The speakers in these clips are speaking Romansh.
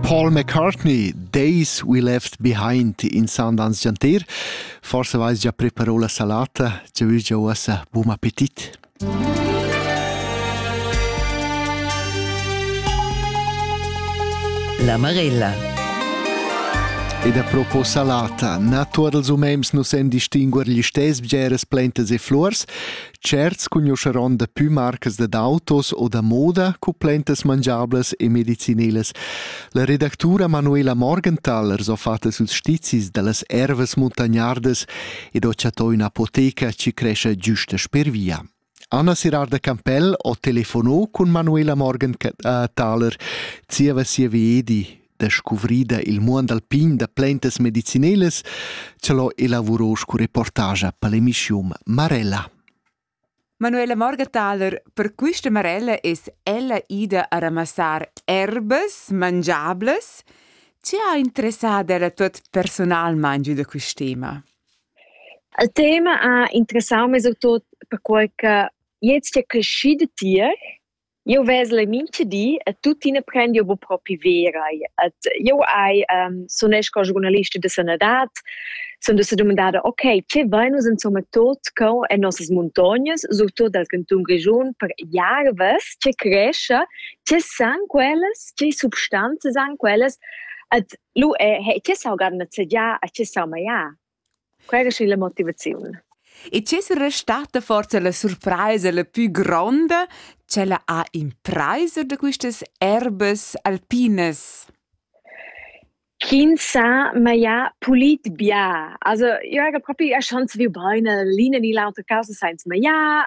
Paul McCartney, Days We Left Behind in Sundance Giantir. Forse vais già preparò la salata, ci vuoi già uossa buon appetit. La Marella. Ed a propos salata, na tuot els umens nu sen distinguer gli stess bgeras plantas e flurs, Tscherts cugnuscheron dapü marcas dad autos o da moda cumplentas mangiablas e medicinelas. La redactura Manuela Morgenthaler s'ho fatta suls stizis da las ervas muntagnardas ed ho chattò ün'apoteca chi crescha güsta sper via. Anna Sirarda Campell ho telefonò cun Manuela Morgenthaler zieva sia viedi descuvrida il muond alpin da plaintas medicinelas, ce l'ho elavurò scu reportagia pel emischium Marella. Manuela Morgenthaler, per quista Marella es ella ida a ramassar erbas mangiables. Chi ha interessada ella tot personalmaing giü da quist tema? Il tema ha interessau meis autur perquai che jetzt è crescida tier Jeu vesel mincha di e tuttina prend jeu buc propi verai. Ed jeu hai sunesch co giurnalista da sanadad, sun da dumandada ok, tge vein nus insomma tot co en nossas muntognas, surtut dal cantun Grischun, per jarvas, tge crescha, tge san quellas, tge substanzas han quellas. Ed lu è, tge saugan nezegiar e tge saumagliar. Quai es illa motivaziun. E chi's restata forsa la surpraisa la pü gronda ch'ella ha impraisa da quistas erbas alpinas? Chi sa maglià pulit bia. Also, io hagi propi erschand saviu bain, l'ina ni l'autra causa sainza magliar.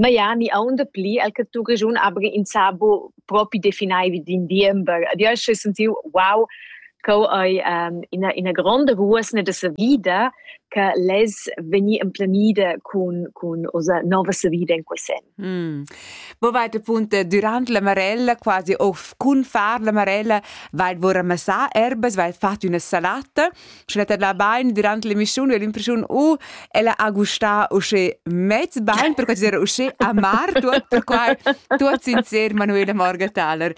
ma ja ni aunda pli el che tu Grischun aber insabo propi definaivi din diember. Ad io sche sentiu wow co ei um, ina ina gronda ruosna de sa vida che les veni emplenida cun cun osa nova sa vida in quesen. Mm. Bo weite punte durant la marella quasi of cun far la marella weil wo ramassar erbes weil fat una salata Sch'ella tadla bain durant l'emissiun u l'impressiun u ella ha gustà uschè mez bain, per considerar uschè amar tuot, perquai tuot sincer Manuela Morgenthaler.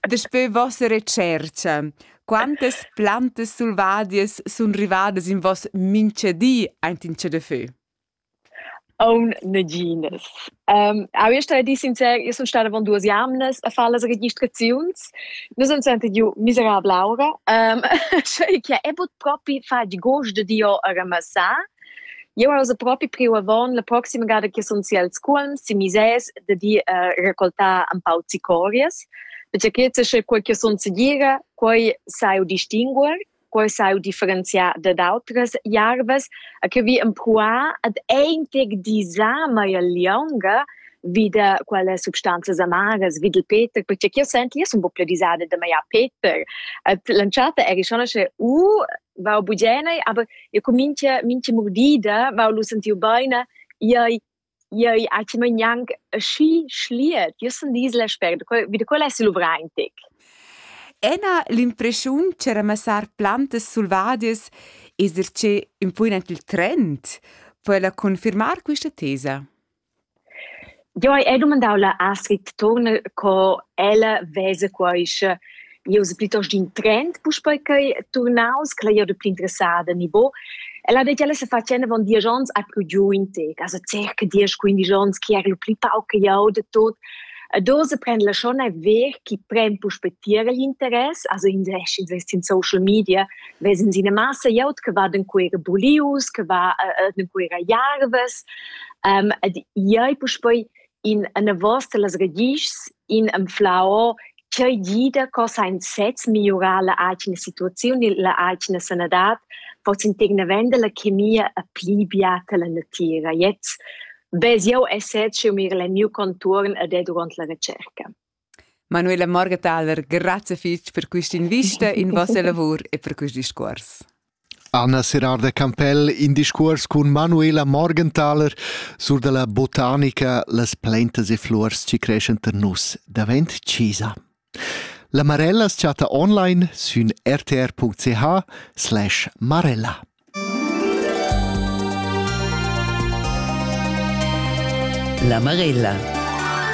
Daspö vossa retschercha, quantas plantas selvadias sun rivadas in voss minchadi aint in chadafö? Aunc naginas. Au jeu stau dir sincer, io sun stada avon duas jamnas a far las registraziuns. Nus han senta giu miserabla aura, sch'ei che ei buc propi fatg gust dad ir a ramassar. Jeu hai ussa propi priu avon la proxima gada che sun si als Cuolms si misès dad ir a raccoltar empau zicorias, perche che sia quei che sun segira, quei sai eu distinguer. quei sau differenziar dad outras jarvas a che vi empruar ad eintig disa mai lieunga vida quelle substanzas amaras vid il Peter perché che io senti io sono un po' più disada da maiar Peter lanciata eri schon che u va bugenei aber io comincia mince mordida va lu sentiu beina iai Jeu hai timen gnanc aschi schliet. Jeu sun disla spert. Wie da quella sul Uvraintic. Ena l'impreschiun che ramassar plantas selvadias es ir che ün po aint il trend per confirmar quista tesa. Jo, hai dumandau la Astrid Turner co ella vesa quaische eu es plitost in trend puspei ch'ei turnaus, ch'el ei da pli interessada nivo. Ella ha detg, ella se facen avon diesch ons a pro giu in tec, also circa diesch, quindisch ons, chi era pli pauc che jau de tot. Dose prendla schon a ver chi pren puspetier l'interess, also in sesch invest in social media, vesen sie eine Masse jaut, che va den queere bulius, che va äh, den queere jarves. Ähm, ed iei puspei in anavos dallas ragischs, in anflau ch'ei gida co sein sez migliurar la atgna situaziun e la atgna sanadad, pots integna vender la chemia a pli biata la natira. Jetzt bez jau essets jeu mir el miu contuorn ad ed durant la recerca. Manuela Morgenthaler, grazie fitg per questa invista in vostra lavor e per questo discorso. Anna Serrar da Campell in discuors cun Manuela Morgenthaler sur dalla botanica las plaintas e flurs ci creschan tar nus davent Cisa. La Marella chatta online sün rtr.ch slash marella. La Marella